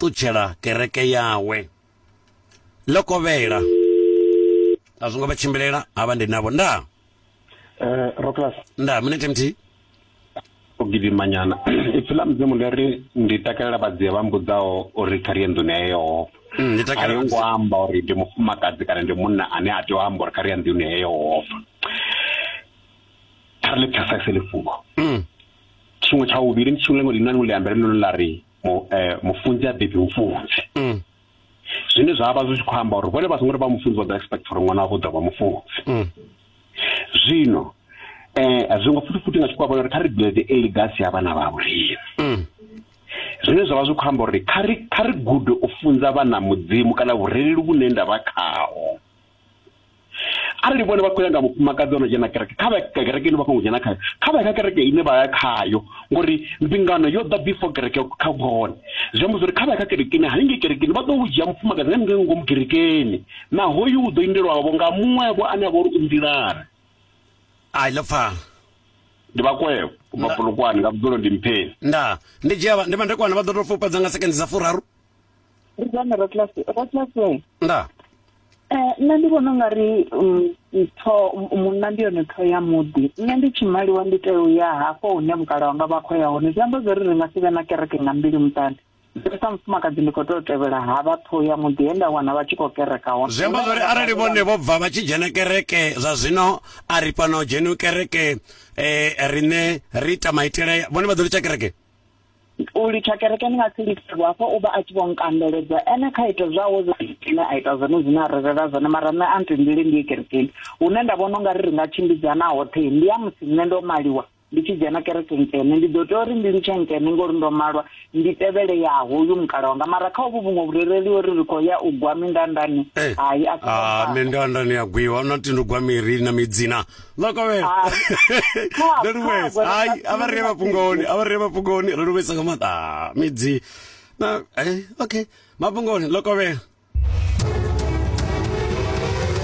ṱutshela kereke yawe ḽo kovhela a zwo ngo vha tshimbilela ha vha ndi navho nda eh, roclas nda minete mthihi o gidimanyana ipfi ḽa mudzimu ḽi ri ndi takalela vhadzia vha mbudzaho uri kha ri ye nḓuni ya yehova mm, a yo ngo amba uri ndi mufumakadzi kana ndi munna ane a tea u amba uri kha ri ya nḓuni ya yehova kha ri ḽi pfesese ḽifhungo mm. tshiṅwe tsha vhuvhili ndi tshiṅwe ḽiṅwe ḽi na ḽiṅwe ḽiambele ḽone ḽa ri mu, eh, mufunzi a bebi mufunzi mm. zwine zwa vha zwi tshi khou amba uri vhone vha songo ri vha mufunzi vha ḓo expect uri ṅwana wavho ḓo vha mufunzi mm. zwino eh a zwi ngo futhi futhi nga tshikwa vhona uri kha ri build a legacy ya vhana vha vhulimi mm. zwine zwa vha zwi khou amba uri kha ri kha ri gude u funza vhana mudzimu kana vhurereli vhune nda vha khaho arali vhone vha khou ya nga mufumakadzi ono dzhena kereke kha vha kereke ine vha songo dzhena khayo kha vha ya kha kereke ine vha ya khayo ngori mbingano yo ḓa before kereke kha vhone zwi amba zwori kha vha ya kha kereke ine haningei kerekeni vha ḓo u dzhia mufumakadzi nga ninge ngomu kerekeni na hoyu u ḓo indelwavho nga muṅwevho ane a vha uri u nḓilani ai ḽo pfala ndi vhakwevho vha polokwane nga vhudzulo ndi mpheni nda ndi dzhia ndi mandekwane vha ḓo tou fupedza nga sekendi dza furaru ri dzone rotlase rotlase nda eh nṋe ndi vhona nga ri mm, ntho munna ndi yone ṱho ya muḓi nṋe ndi tshimaliwa ndi tea u ya hafho hune mukala wanga vha khou ya hone zwi amba zwori ri nga si vhe na kereke nga mbili muṱani nṋe sa mufumakadzi ndi khou tea u tevhela ha vha ṱho ya muḓi he nda wana vha tshi khou kereka hone zwi amba zwori arali vhone vho bva vha tshi dzhena kereke zwa zwino a ri fhano dzheni kereke eh riṋe ri ita maitele vhone vha ḓo litsha kereke u litsha kereke ni nga si litshe vho hafho u vha a tshi vho nkandeledza ene kha ita zwawe zwine a ita zwone zwine a ri rela zwone mara nṋe a ntendele ndi ye kerekeni hune nda vhona ungari ri nga tshimbidzana hoṱhe ndi ya musi nṋe ndo maliwa ndi tshi dzhena kereke nkene ndi ḓo tea uri ndi litshe nkene ngori ndo malwa ndi tevhele ya hoyu mukala wanga mara kha uvhu vhuṅwe vhurereli uri ri khou ya u gwa mindandani eh. hai a ah, mindandani ya gwiwa na tindi gwa miri na midzina ḽa kovhela ri luvhesa hai a vha ri mafhungoni a vha ri mafhungoni ri luvhesa nga maanḓa midzi na eh okay mafhungoni ḽo kovhela